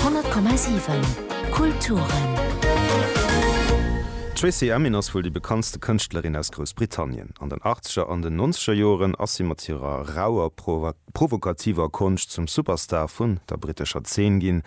100,7 Kulturen. D'Tracey Emin ass wuel déi bekanntste Kënschtlerin aus Groussbritannien. An den Achtzeger an den Nonzeger Joren ass si mat hirer rauer, provokativer Konscht zum Superstar vun der brittescher Zeen ginn.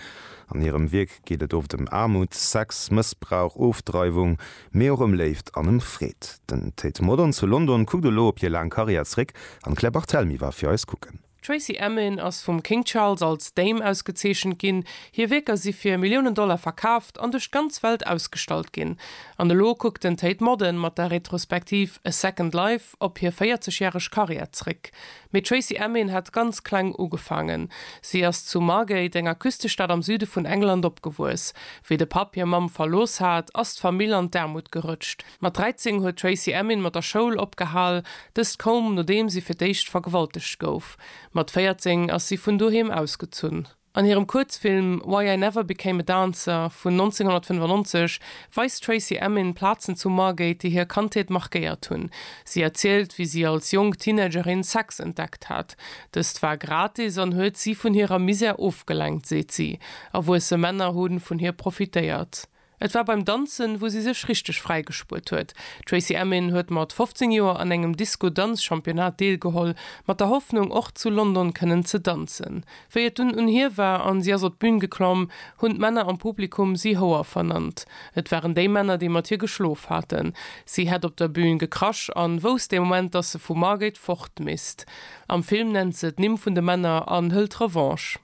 An hirem Wierk geet et oft ëm Aarmut, Sex, Mëssbrauch, Ofdreiwung, mee och ëm Léift an ëm Freed. Den Tate Modern zu London kuckt elo op hir laang Karriär zeréck an d'Claire Barthelmy war fir eis kucken. D'Tracey Emin ass vum King Charles als Dame ausgezeechent ginn. Hir Wierker si fir Milliounen Dollar verkaaft an duerch d'ganz Welt ausgestallt ginn. An elo kuckt den Tate Modern mat der Retrospektiv A Second Life op hir 40 järeg Karriär zréck. Mee d'Tracey Emin hat ganz kleng ugefaangen. Si ass zu Margate, enger Küstestad am Süde vun England, opgewuess. Wéi de Papp hir Mamm verlooss hat, ass d'Famill an d'Aarmut gerëtscht. Mat 13 huet d'Tracey Emin mat der Schoul opgehal, dëst koum nodeem si fir d'éischt vergewaltegt gouf. Mat 14 ass si vun doheem ausgezunn. An hirem Kuerzfilm Why I Never Became a Dancer vun 1995 weist d'Tracey Emin Plazen zu Margate, déi hir Kandheet markéiert hunn. Si erzielt, wéi si als jonk Teenagerin Sex entdeckt hat. Dëst war gratis an huet si vun hirer Misär ofgelenkt, seet si. Erwuesse Männer hu vun hir profitéiert. Et war beim Danzen, wou si sech richteg fräigespuert huet. D'Tracey Emin huet mat 15 Joer an engem Disco-Danz-Championnat deelgeholl, mat der Hoffnung, och zu London kënnen ze danzen. Wéi et dunn un hir war an si ass op d'Bün geklomm, hunn d'Männer am Publikum si Houer vernannt. Et waren déi Männer, déi mat hir geschlof haten. Si hätt op der Bün gekrasch an wousst dee Moment, dass se vu Margate fort misst. Am Film nennt se d'Nimm vun de Männer an hëlt Revanche.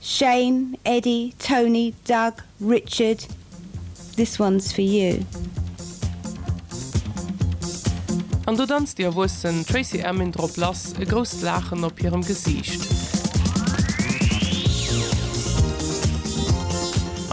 Shane, Eddy, Tony, Doug, Richard, this one's for you. An do danzt déi erwuessen Tracey Emin drop lass, e grousst Laachen op hirem Gesiicht.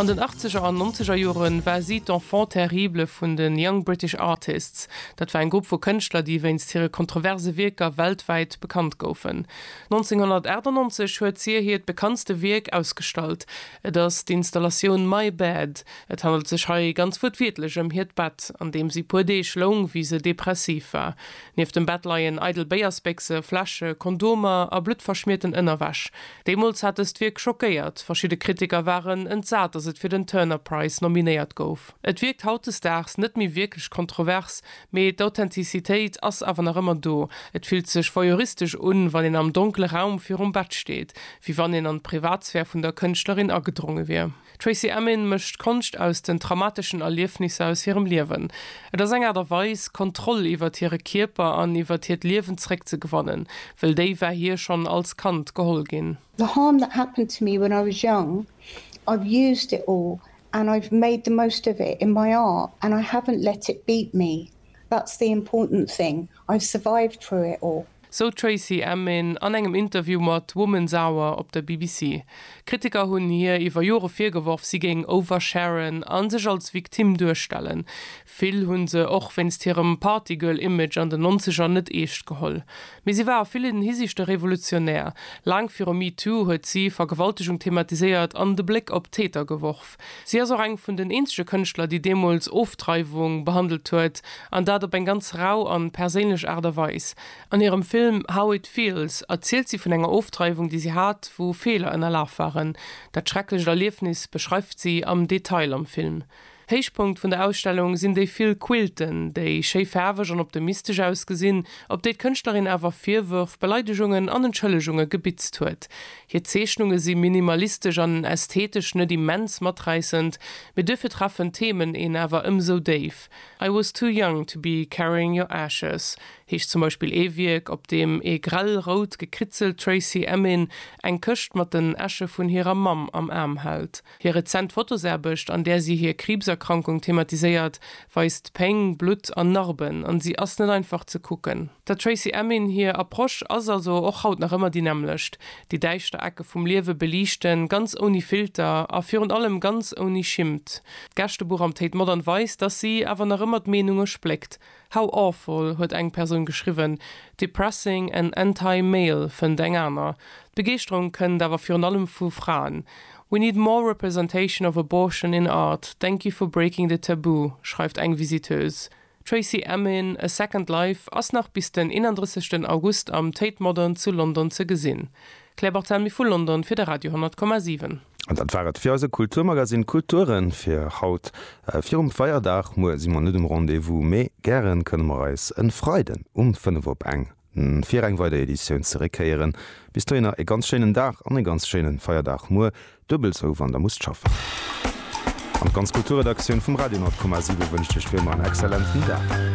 An den Achtzeger an Nonzeger Jore war si d'Enfant terrible vun de Young British Artists. Dat war eng Grupp vu Kënschtler, déi wéinst hire kontroverse Wierker weltwäit bekannt goufen. 1998 huet hie hiert bekanntste Wierk ausgestallt, et ass d'Installatioun My Bed. Et handelt sech hei ganz wuertwiertlech ëm hiert Bett, an deem si puer Deeg loung, wéi se depressiv war. Nieft dem Bett leien eidel Béiersbéchse, Fläsche, Kondomer a bluttverschmierten Ënnerwäsch. Deemools hat dëst Wierk schockéiert, verschidde Kritiker waren entsat, datt et fir den Turner Prize nominéiert gouf. Et wierkt hautdesdaags net méi wierklech kontrovers, mee d'Authentizitéit ass awer nach ëmmer do. Et fillt sech voyeuristesch un, wann een am donkele Raum virum Bett steet, wéi wann een an d'Privatsphär vun der Kënschtlerin agedronge wier. D'Tracey Emin mécht Konscht aus den traumateschen Erliefnisser aus hirem Liewen. Et ass eng Aart a Weis, Kontroll iwwert hire Kierper an iwwert hiert Liewen zeréckzegewannen, wëll déi war hir schonn als Kand geholl ginn. The harm that happened to me when I was young, I've used it all and I've made the most of it in my art and I haven't let it beat me, that's the important thing, I've survived through it all. Sou d'Tracey Emin an engem Interview mat Woman's Hour op der BBC. Kritiker hunn hir iwwer Jore virgeworf, si géing oversharen a sech als Victime duerstellen. Vill hu se och wéinst hirem Partygirl-Image an den Nonzeger net eescht geholl. Mee si war a villen Hisiichte revolutionär. Laang viru MeToo huet si Vergewaltegung thematiséiert an de Bléck op d'Täter geworf. Si ass och eng vun den eenzege Kënschtler, déi deemools Ofdreiwung behandelt huet, an dat op eng ganz rau an perséinlech Aart a Weis. An hirem Film How It Feels erzielt si vun enger Ofdreiwung, déi si hat, wou Feeler ënnerlaf waren. Dat schrecklecht Erliefnis beschreift si am Detail am Film. Héichpunkt vun der Ausstellung sinn déi vill Quilten, déi schéi faarweg an optimistesch ausgesinn, op déi d'Kënschtlerin awer Virwërf, Beleidegungen an Entschëllegunge gebitzt huet. Hir Zeechnunge si minimalistesch an ästhetesch net immens maträissend, mee duerfir treffen d'Themen een awer ëmsou déif. I was too young to be carrying your ashes heescht zum Beispill ee Wierk, op deem ee grell rout gekritzelt Tracey Emin eng Këscht mat den Äsche vun hirer Mamm am Aarm hält. Hir rezent Fotosaarbecht, an där si hir Kriibserkrankung thematiséiert, weist Péng, Blutt an Narben, an si ass net einfach ze kucken. Der Tracey Emin hir Approche ass also och haut nach ëmmer déi nämmlecht, déi däischter Ecke vum Liewe beliichten, ganz ouni Filter a virun allem ganz ouni Schimmt. D'Gästebuch am Tate Modern weist, dass si awer nach ëmmer d'Meenunge spléckt. How awful huet eng Persoun geschriwwen, depressing and anti-male fënnt eng aner. D'Begeeschterung kënnt awer virun allem vu Fraen. We need more representation of abortion in art, thank you for breaking the taboo, schreift eng Visiteuse. Tracey Emin, A Second Life ass nach bis den 31 August am Tate Modern zu London ze gesinn. D'Claire Barthelmy vu London fir de Radio 10,7. An dat war et fir eise Kulturmagasinn Kulture fir haut virum Feierdag. Muer si mer net um Rendez-vous, mee gären kënne mer eis en Freiden um 5 op eng fir eng weider Editioun zeréckhéieren. Bis dohinner e ganz schéinen Dag an e ganz schéinen Feierdag. Muer duebel sou wann der musst schaffen. An d'ganz Kulturredaktioun vum Radio 10,7 wënscht iech wéi ëmmer en exzellenten Dag.